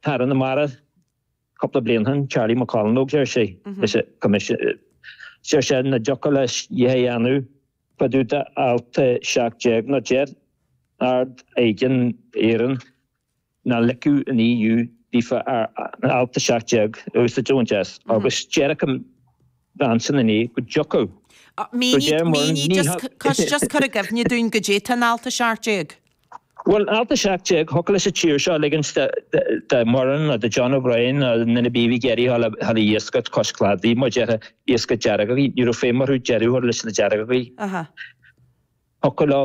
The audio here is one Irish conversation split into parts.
Aire na Mara cúpla bliain ó shin, Charlie McConalogue, deir sé, leis an Choimisiún, deir sé nach dtiocfadh leis a dhath a dhéanamh fá dtaobh d'alt 17 nó deir Ard Aighne Éireann nach ligfeadh an EU díofa ar alt 17 a úsáid a bhaint as agus deir an ansin inné go dtiocfadh. Go deimhin, muran, ní hea. Mínigh, just cur i gcuimhne dúinn goidé tá in alt 17. Bhuel, alt 17, thiocfadh leis an tír seo ligint do Mhuireann nó do John O'Brien nó na na Beavy Geraghty dhul a iascaireacht cois cladaigh, mar a déarfá, iascaireacht deargógaí. Ní raibh feidhm orthu deireadh a chur leis na deargógaí. Thiocfadh leo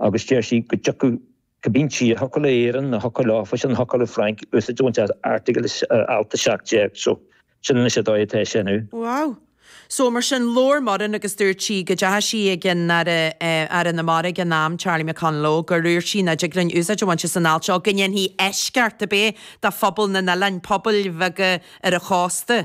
agus deir sí go dtiocfadh go cinnte, thiocfadh le Éirinn, nó thiocfadh leofasan, thiocfadh le Frainc, úsáid a bhaint as airteagal, as alt 17, so, sin anois an dóigh atá sé inniu. Wow. So, mar sin, labhair Muireann agus dúirt sí go dteachaigh sí ag an Aire, Aire na Mara ag an am, Charlie McConalogue, gur úirt sí nach dtig linn úsáid a bhaint as an alt seo, go ndéanfaidh eisceacht, ab é, do phobail na n-oileáin, pobail bheaga ar an chósta.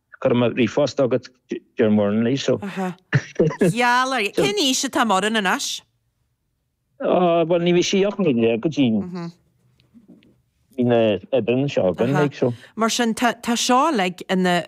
Chuir mé ríomhphost agat Deir Murnley so. gheall air. Cén aois atá Muireann anois? Bhuel, ní bhí sí ach naoi déag go dtí Bhí na Iban seo againn. Ag so. Mar sin, tá tá seo uilig ina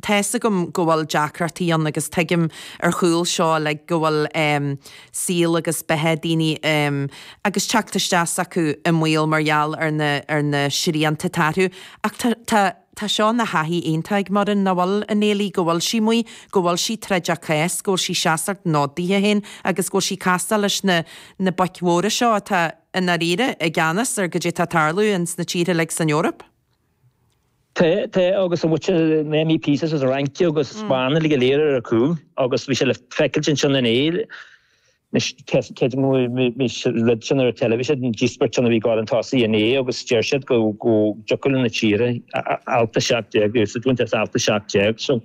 Tá fhios agam go bhfuil deacrachtaí ann agus tuigim ar chúl seo uilig go bhfuil saol agus beatha daoine agus teacht isteach s'acu i mbaol mar gheall ar na ar na srianta atá orthu ach tá tá Tá seo ina thaithí iontach ag Muireann, nach bhfuil, a Néilí? Go bhfuil sí amuigh, go bhfuil sí ag troid a cás, go bhfuil sí ag seasamh an fhóid daoithe féin agus go bhfuil sí ag castáil leis na na boic mhóra seo atá, i ndáiríre, i gceannas ar goidé tá tarlú ins na tíortha uilig san Eoraip. Tá, tá, agus an bhfaca na MEPs as an Fhrainc agus as Spáinn uilig go léir ar a cúl agus bhí sé le feiceailt ansin inné, Anois, cé a mhúinfidh rud sin ar an teilifís? Is é an díospóireacht a bhí ag gabháil chun tosaigh inné agus deir siad go dtiocfadh le na tíortha, alt 17, úsáid a bhaint as alt 17. So,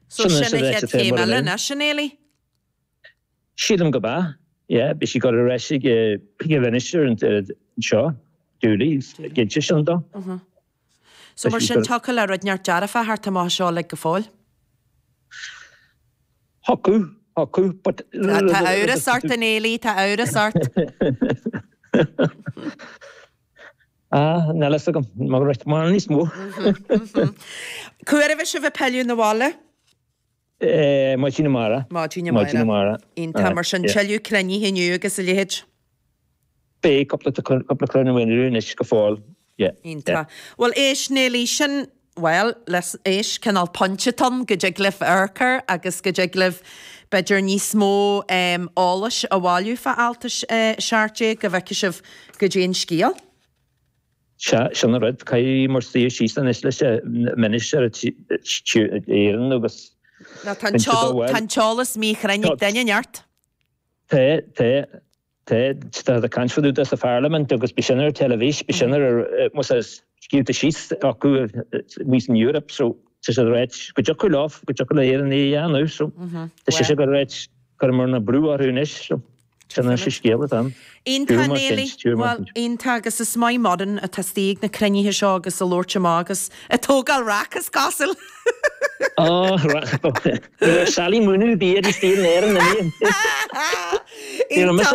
sin anois a bheas ag plé mura linn. Sílim go mb'ea. Yeah, beidh sí ag gabháil ar ais ag an Mhinister anseo, Dooley, is cinnte sin dom. So mar sin, thiocfadh le rud inteacht dearfa a theacht amach as seo uilig go fóill? Thiocfadh, thiocfadh, but. Tá amhras ort a Néillí, tá amhras ort. Ah, níl a fhios agam, mar níos mó. Cá huair a bheas sibh ag pilleadh na bhaile? Maidin amárach. Maidin amárach. Iontach. Mar sin, tuilleadh cruinnithe inniu agus a leithéid? Beidh, cúpla cruinniú amháin inniu anois go fóill. Iontach. Bhuel, éist, Néilí, sin, bhuel, éist, cineál pointe atá ann go dtig libh amharc air agus go dtig libh b'fhéidir níos mó eolais a bhailiú fá alt 17 go bhfeice sibh goidé an scéal. Sea, sin an rud, caithfidh muir suí síos anois leis an mbinnis ar an Éirinn agus Ná tá an t-eolas míchruinn ag duine, neart? Té, té, té, tá sé caint fada sa pharlaimint agus bhí sin ar an teilifís, bhí sin ar ar, muis scríofa síos acu, we in Europe, so tá siad ag ráit, go dtiocfadh leo, go dtiocfadh le hÉireann é a dhéanamh, so tá sise ag ráit, cuirfidh muir na brú orthu anois, so. Sin é an scéal atá ann. Iontach agus is maith muidne atá istigh ag na cruinnithe seo agus ag labhairt amach agus ag tógáil raic, is cosúil! Sally Mooney, bí ar an saol in Éirinn inniu!